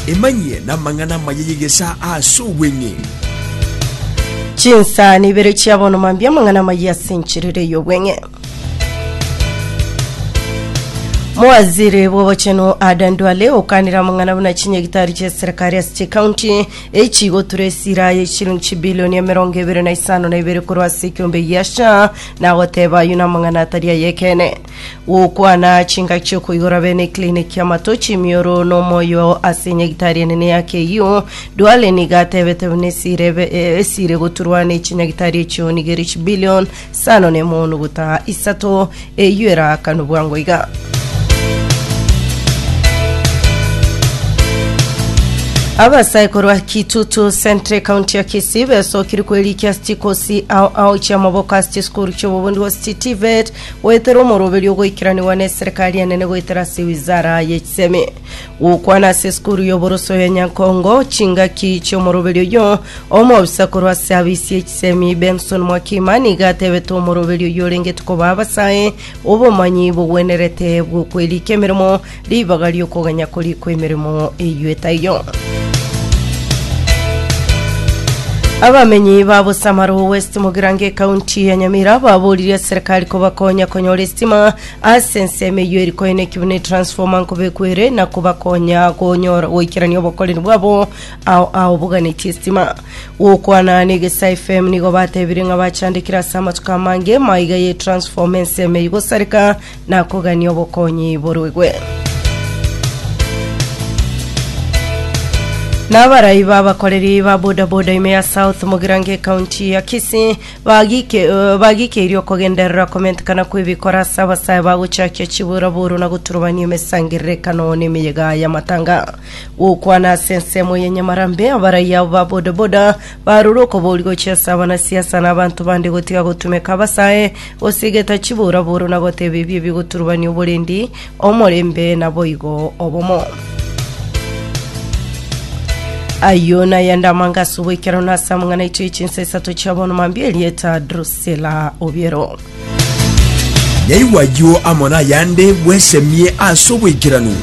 Emanyie namang'ana amaya y'egesaa ase obweng'ee. Chinsani ibere chia bono mambia amang'ana amaya ase enchiriri ey'obweng'e. Mowaziri bw'obochenu Adan Duale okanire amang'ana buna chinyagitari chia eserikari ase chikaunti echigotura esira ye chilingi chibilioni emerongo ebere na isano na ibere korwa ase ekiombe giasha nagoteba ayio namang'ana atari ayekene. gokwana chingaki chiokoigora bene eklinik y'amatochi emioro nomoyo ase enyagitari enene ya KU Duale niga atebete buna esire be- eh, esire goturwa ne chinyagitari echio niga ere chibilion sano nemo nuguta isato eyio eraakanu bwango iga abasaikoro a kitutu centre county ya kisii besokiri kwerikia chikosi ao ao chiamaboko ase chisukuru chiobobundu ase chitivet Goetera omoroberio ogoikaranigwa n'eserekari enene goetera ase wizara y'echisemi. Gokwana ase esukuru y'oboroso ya Nyankongo chingaki chi'omoroberio oyio. Omobisa korwa ase abisi y'echisemi Benson Mwakima nigo atebete omoroberio oyio orengeti koba abasae obomanyi bogwenerete bw'okwerika emeremo Ribaga ri'okoganya korikwa emeremo eyio taiyo. Abamenyi ba Bosamaro West mu Girango ekaunti ya Nyamira baboririe serikali kobakonya konyora esitima ase ensemo eyio eri koenekio buna transformer nkobekwa ere na kobakonya konyora goikerania obokoreri bwabo ao ao boganetie esitima gokwana na egesa FM nigo batebire ng'a bachandekire ase amatuko amange maiga ye transformer ensemo eyio gosareka Nakogania obokonyi boruigwe. Nabarai babakoreri ba bodaboda ime ya South Mugirango ekaunti ya Kisii bagike eh, bagikeirie okogenderera komentekana kw'ebikora ase abasae bagochakia chiburaburu na goturubania emesangererekano n'emeyega y'amatanga gokwana ase ensemo ya Nyamarambe abarai abo ba bodaboda barure okobori gochia ase abanasiasa na abanto bande gotiga gotumeka abasae Gose geta chiburaburu na goteba ebi ebigoturubania oborendi, omorembe naboigo obomo. Ayio nayende amanga ase oboikero na ase amang'ana aito y'echinsa isato chia bono mambia erieta Drusilla Obiero. Nyaigwa ayio amo nayande bwesemie ase oboikeranu.